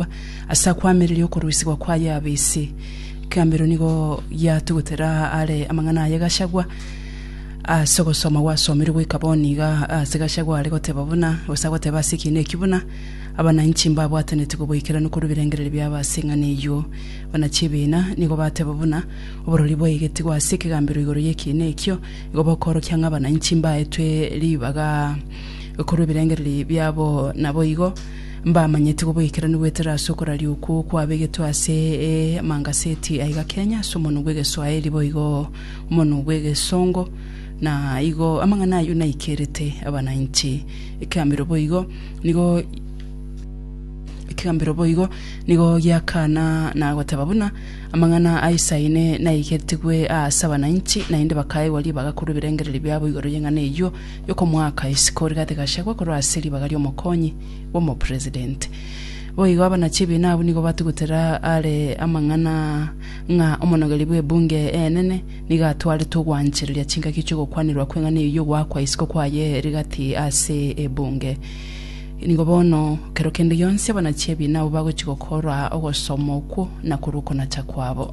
Yahweh ase akoamereria okorusigwa kwaye abe ise. Gambero nigo yatugutera are amang'ana aye Gachagua ase ogosoma gwasomirwe goika bono iga ase Gachagua are goteba buna gose agoteba ase ekiina ekio buna abananchi mbabwataneti koboikeranu korwa ebirengererio biabo ase eng'ana eyio. Buna chibiina nigo bateba buna oborori bwaigetigwe ase ekegambero igoro y'ekiina ekio igo bokoorokia ng'a abananchi mbaetwe ribaga korwa ebirengererio biabo naboigo Mbamanyeti goboikeranu goetera ase okoraria okwo kwabegetwe ase mangaseti aiga Kenya ase omonwa bw'egeswaeri boigo omonwa bw'egesongo na igo amang'ana ayio naikerete abanainchi ekegambero boigo nigo ekegambero boigo nigo giakana na goteba buna amang'ana a Isaine naigetigwe aase abanainchi naende bakaegwa ribaga korwa ebirengererio biabo igoro y'eng'ana eyio yokomoaka isiko rigati gachagwa korwa ase ribaga ri'omokonyi bw'omopresidenti. Boigo abanachi ebiina abwo nigo batugutera are amang'ana ng'a omonogeri bw'ebunge enene nigo atwarete ogwanchereria chingaki chi'ogokwanirwa kw'eng'ana eyio y'ogoakwa isiko kwaye rigati ase ebunge. Nigo bono kero kende gionsi abanachi ebiina abwo bagochia gokora ogosoma okwo na korwa okonacha kwabo.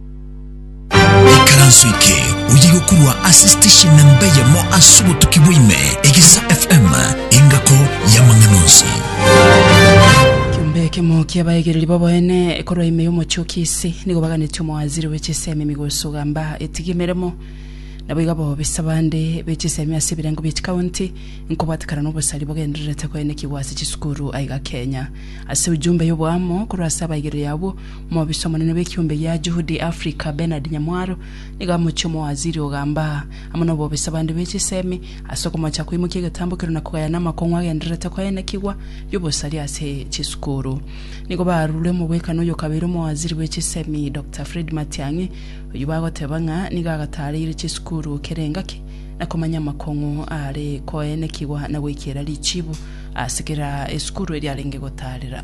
Ekaranso eke oye gokurwa ase station na mbeyemo ase obotuki bwaime egesa FM engako y'amang'ana onsi. Kiombe ekemo ki'abaegereri b'oboene korwa ime y'omochie o Kisi nigo baganetie omowaziri bwe chisemi Migosi Ogamba etige emeremo naboigo abobisa bande be chisemi ase ebirengo bie chikaunti nkobwatekana nobosari bogendererete koenekigwa ase chisukuru aiga Kenya. Ase ujumbe y'oboamo korwa ase abaegereri abwo, Mobisa omonene bw'ekiombe gia Juhudi Afrika, Bernard Nyamwaro, nigo amochie omowaziri ogamba aa, amo nobobisa bande bwe chisemi, ase okomocha koimokia egetambokero na kogayana amakong'u agendererete koenekigwa y'obosari ase chisukuru. Nigo barure omogwekano oyo kabeire omowaziri bwe chisemi, Doctor Fred Matiang'i, oyio bagoteba ng'a nigo agatareire chisukuru kera engaki na komanya amakong'u aare koenekigwa na goikiera richibu ase kera esukuru eria arenge gotarera.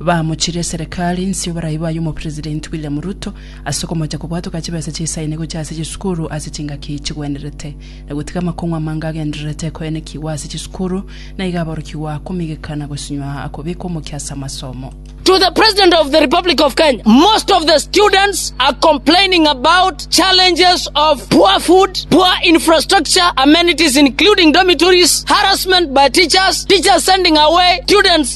Baamochirie eserekari nsio barai baye Omopresidenti William Ruto ase okomocha kobwatoka chibesa chi'esaini gochia ase chisukuru ase chingaki chigwenerete, na gotiga amakong'u amange agendererete koenekigwa ase chisukuru na iga aborokigwa komigeka na gosinywa akobekwa omokia ase amasomo. To the President of the Republic of Kenya, Most of the students are complaining about challenges of poor food, poor infrastructure, amenities including dormitories, harassment by teachers, teachers sending away students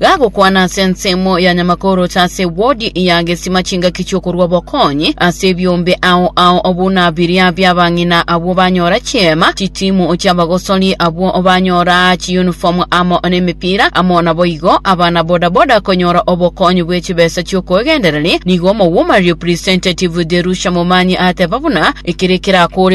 Gagokwana ase ensemo ya Nyamakorocha ase wodi ya Gesima chingaki chi'okorua obokonyi ase ebiombe ao ao buna biria bi'abang'ina abwo banyora chiema, chitimu chi'abagosori abwo banyora chiyunifomu amo nemepira, amo naboigo abana bodaboda konyora obokonyi bwe chibesa chi'okoegendereria. Nigo omobwomarerio presentative Derusha Momanyi ateba buna ekere kerakoore